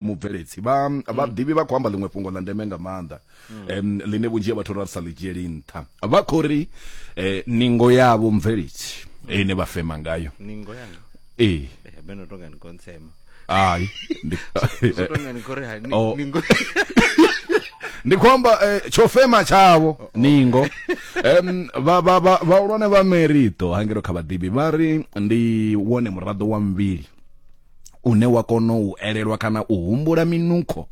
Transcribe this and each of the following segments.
mubveledzi vha mm. vhaḓivhi vha khou amba ḽiṅwe fhungo ḽa ndeme nga maanḓa um ḽine vhunzhi ha vhathu ra sa ḽi dzhieli nṱha vha khou ri um ningo yavho mubveledzi ine vha fema ngayo ningo yanga ee beno tonga ni kontsema hayi tonga ni kore hayi oh. ningo ndi khou amba eh, tsho fema tshavho ningo um vhahulwane vha merito hangelo kha vhaḓivhi vha ri ndi wone muraḓo wa muvhili une wa kona u elelwa kana u humbula minukho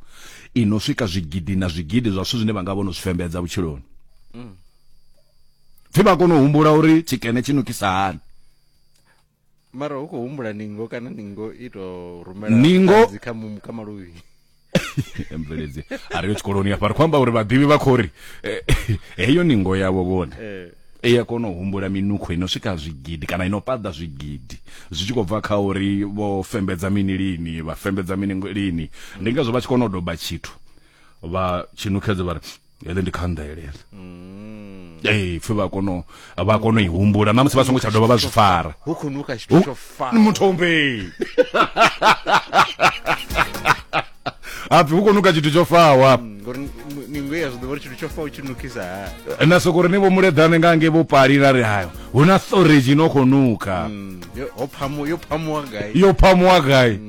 i no swika zwigidi na zwigidi zwa zwithu zwine vha nga vho no zwi fembedza vhutshiloni mm. pfi vha kona u humbula uri tshikene tshi nukisa hani mara hu khou humbula ningo kana ningo i tou rumela ningo kha maluvhi mveledzi a ri yo tshikoloni hafha ri khou amba uri vhaḓivhi vha khou ri eh, heyo ningo yavho vhone eh. i a kona u humbula minukho ino swika zwigidi kana ino paḓa zwigidi zwi tshi khou bva kha uri vho fembedza mini lini vha fembedza mini lini ndi ngazwo vha tshi kona u doba tshithu vha tshinukhedze vha ri ele ndi khanḓele ele mm. ee pfe vha kono vha kono i humbula na musi vha songo tsha dovha vha zwi fara hu khou nuka tshithu tsho fara muthombe apfi hu khou nuka tshithu tsho fawa mm, ngori ningo ya zwi ḓo vha tshithu tsho fawa tshi nukisa ha na soko ri ni vho muleḓane nga nge vho pali ra ri hayo hu na storage no khou nuka mm, yo phamuwa gai yo phamuwa gai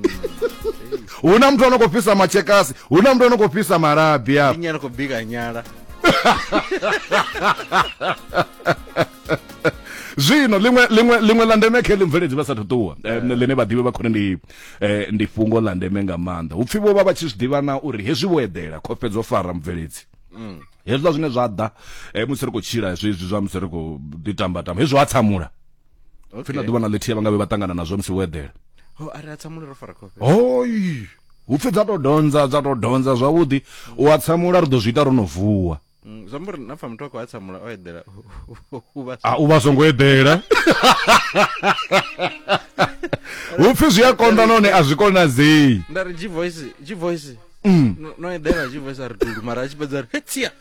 hu na muthu ano khou fhisa matshekasi hu na muthu ano khou fhisa malabi a nyana khou bika nyala zwino liṅwe liṅwe liṅwe la ndeme khe ḽimveledzi vha sa thu ṱuwa eh, ḽine vhaḓivhi vha khone ndi eh, ndi fhungo ḽa ndeme nga maanḓa hupfi vho vha vha tshi zwi ḓivha na uri hezwi vho eḓela khofhe dzo fara mubveledzi mm. hezwiḽa zwine zwa ḓa eh, musi ri khou tshila zwezwi zwa musi ri khou ḓi tamba tamba hezwi ha tsamula okay. fina ḓuvha na ḽithihi vha nga vhe vha ṱangana nazwo musi wo eḓela ho oh, a ri a tsamula ro fara khofhe hoi hu pfi dza to donza dza to donza zwavhuḓi u a tsamula ri ḓo zwi ita ro no vuwa mm, zwi amba uri na pfa muthu a khou a tsamula o eḓela a u vha songo eḓela hu pfi zwi a konḓa nahone a zwi konadzei nda ri g voice g voice mm. no eḓela g voice a ri tulu mara a tshi fhedza ri hetsia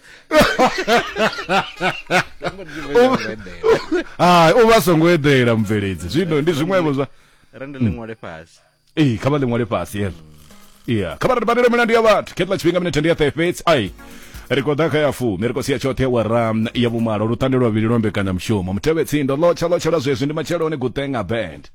hai u vha songo eḓela mubveledzi zwino ndi zwiṅwevho zwa rende ḽi ṅwale fhasi ee kha vha ḽi ṅwale fhasi yelo ya kha vha ri badele milandu ya vhathu khetla tshifhinga minethe ndi ya ṱahe fhedzi ai ri khou ḓa kha ya fumi ri khou sia tshoṱhe wa ram ya vhumalo lutande lwa vhili lwa mbekanyamushumo mutevhe tsindo lotsha lotsha lwa zwezwi ndi matsheloni gutenga band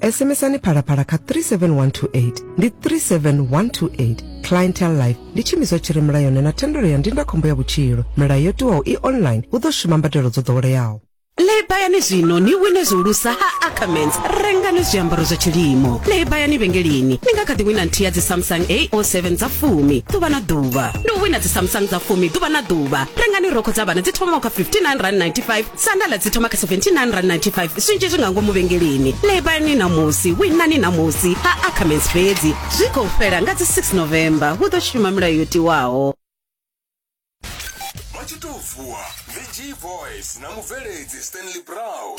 SMSani phalaphala kha 37128 ndi 37128 clientele life ndi tshiimiswa tshi re mulayoni na thendelo ya ndindakhombo ya vhutshilo milayo yo tiwaho i online hu ḓo shuma mbadelo dzo ḓoweleaho lebayani zwino ni wine zwihulusa ha ackermans rengani zwiambaro zwa tshilimo lebayani vhengeleni ni nga kha ḓi wina nthihi ya dzisamsung ao7 dza fumi ḓuvha na ḓuvha ndi u wina dzisamsung dza fumi ḓuvha na ḓuvha rengani rokho dza vhana dzi thomaho kha 59 rand 95 Sandala dzi thoma kha R79.95 zwinzhi zwi nga ngomu vhengeleni. Lebani ṋamusi, winani ṋamusi ha Ackermans fhedzi. Zwi khou fhela nga dzi 6 November, hu ḓo shuma milayo yo tiwaho. vha tshi tou vuwa ndi g boys na mubveledzi stanley brown